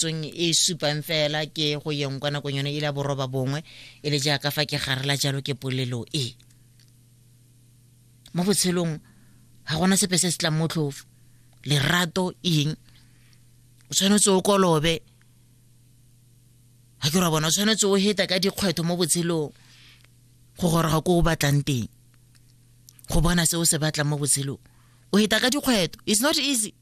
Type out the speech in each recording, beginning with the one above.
tsong e supang fela ke go yeng kwa nakong yone e le ya boroba bongwe e le jaaka fa ke garela jalo ke polelo e mo botshelong ga gona sepe se se tlang motlhofo lerato eng o tshwanetse o kolobe ga ke ra bona o tshwanetse o heta ka dikgwetho mo botshelong go goroga ko o batlang teng go bona se o se batlang mo botshelong o heta ka dikgwetho it's not easy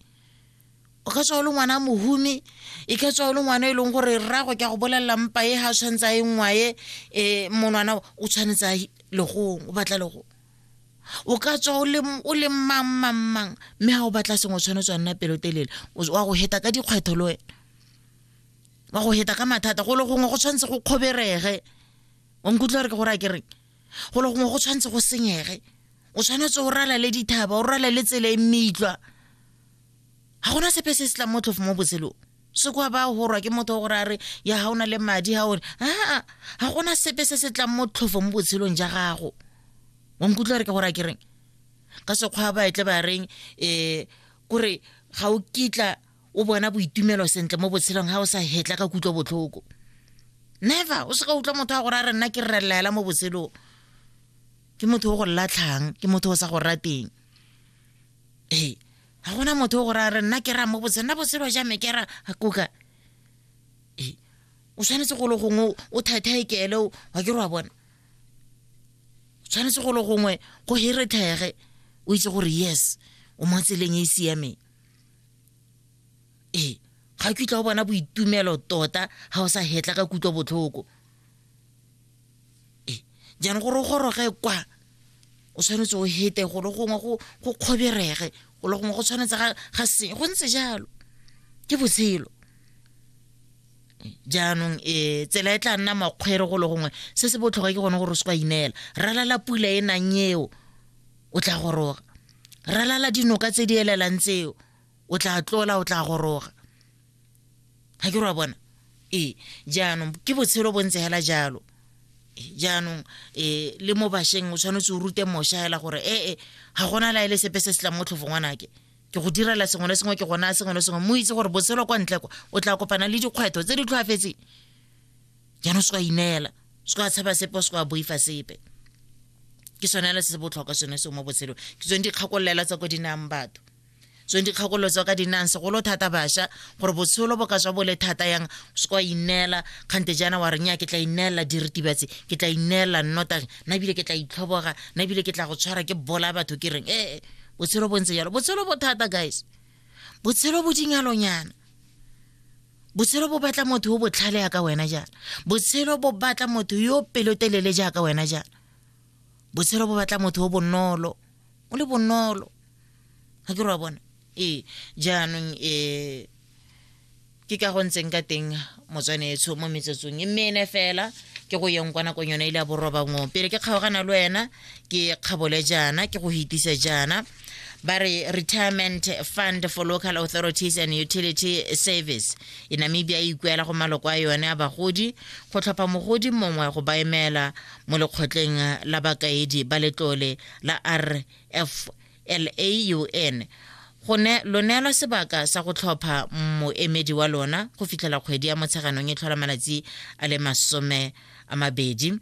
o ka tswa o le ngwana a mohumi e ka tswa o le ngwana e leng gore rrago ke a go bolelela mpa e ga tshwanetse a e ngwae um eh, monwana o tshwanetse a legong o batla legong o ka tswa o le mang mang mang mme ga o batla sengwe o tshwanetse wa nna pelotelele wa go heta ka dikgwetho le wena wa go heta ka mathata go le gongwe go tshwanetse go kgoberege o nkutlwa re ke gore a kereng go le gongwe go tshwanetse go senyege o tshwanetse o ralale dithaba o ralale tsela e meitlwa ga gona sepe se se tlang motlhofo mo botshelong se kwa ba gorwa ke motho gore a re ya ga o na le madi ga one aa ga gona sepe se se tlang motlhofo mo botshelong ja gago wa nkutlwa re ke gore a kereng ka sekgwa ba etle ba reng um kore ga o kitla o bona boitumelo sentle mo botshelong ga o sa hetla ka kutlwa botlhoko never o se ka utlwa motho wa gore a re nna ke rrelelela mo botshelong ke motho o go latlhang ke motho o sa go rateng ee ga gona motho o gore a re nna ke raya mo botshelo nna botshelo ja me ke ra kuka ee o tshwanetse go le gongwe o thathae keele wa ke re wa bona o tshwanetse go le gongwe go herethege o itse gore yes o mo tseleng e e siameng ee ga ke utlwa o bona boitumelo tota ga o sa hetla ka kutlwa botlhoko e jaanong gore o goroge kwa o tshwanetse o hete go le gongwe go kgoberege go le gongwe go tshwanetse ga seng go ntse jalo ke botshelo jaanong e tsela e tla nna makgwere go le gongwe se se botlhokwa ke gone gore o se kwa ineela ralala pula e nang eo o tla goroga ralala dinoka tse di elelang tseo o tla tlola o tla goroga ga ke ra bona ee jaanong ke botshelo bo ntse hela jalo jaanong um le mo bašweng o tshwanetse o rute mošwa hela gore ee ga gona la e le sepe se se tlang mo tlhofo ngwanake ke go direla sengwe le sengwe ke gona sengwe le sengwe mo itse gore botshelo kwa ntle kwa o tla kopana le dikgwetlho tse di tlhoafetseng jaanong se ka ineela se ka tshaba sepe se ka boifa sepe ke sone le se se botlhokwa sone se mo botshelong ke tsone dikgakololelo tsa ko di nayang batho tsweng dikgakolotswa ka dinang segolo thata bašwa gore botsholo bo ka tswa bo le thata yang o se kwa ineela kgante jaana wa reng ya ke tla ineelela diritibatse ke tla ineelela nnotagi na ebile ke tla itlhoboga na ebile ke tla go tshwara ke bola batho ke reng ee botshelo bo ntse jalo botshelo bo thata guys botshelo bo dingalonyana botshelo bo batla motho yo botlhale ya ka wena jaana botshelo bo batla motho yo pelotelele jaaka wena jaana botshelo bo batla motho yo bonolo o le bonolo ga ke re wa bona ee jaanong um ke ka go ntseng ka teng motswanetsho mo metsotsong e mene fela ke go yeng kwa nakong yone ile ya borobangong pele ke kgaogana le wena ke kgabole jaana ke go hitise jaana ba re retirement fund for local authorities and utility service e namibia e ikuela go maloko a yone a bagodi go tlhopha mogodi mongwe go baemela mo lekgotleng la bakaedi ba letlole la RFLAUN go ne lo neelwa sebaka sa go tlhopha moemedi wa lona go fitlhela kgwedi ya motsheganong e tlhola malatsi a le masome a mabedi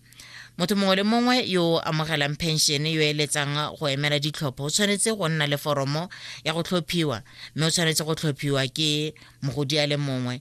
motho mongwe le mongwe yo o amogelang pension yo eletsang go emela ditlhopho o tshwanetse go nna le foromo ya go tlhophiwa mme o tshwanetse go tlhophiwa ke mogodi a le mongwe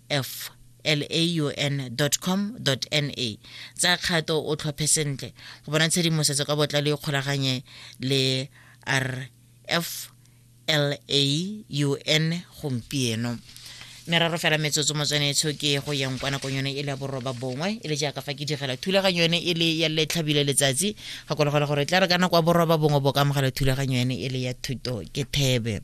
f laun.com na tsa kgato o tlhophe sentle go bona tshedimosetso ka botlalo e kgolaganye le rf laun gompieno meraro fela metsotso motswanetsho ke go yang kwa nakong yone e le ya boroba bongwe e le jaaka fa ke digela thulaganyo yone e le ya letlhabile letsatsi gakologelwa gore tla re ka nako ya boroba bongwe bo ka amogela thulaganyo yone e le ya thuto ke thebe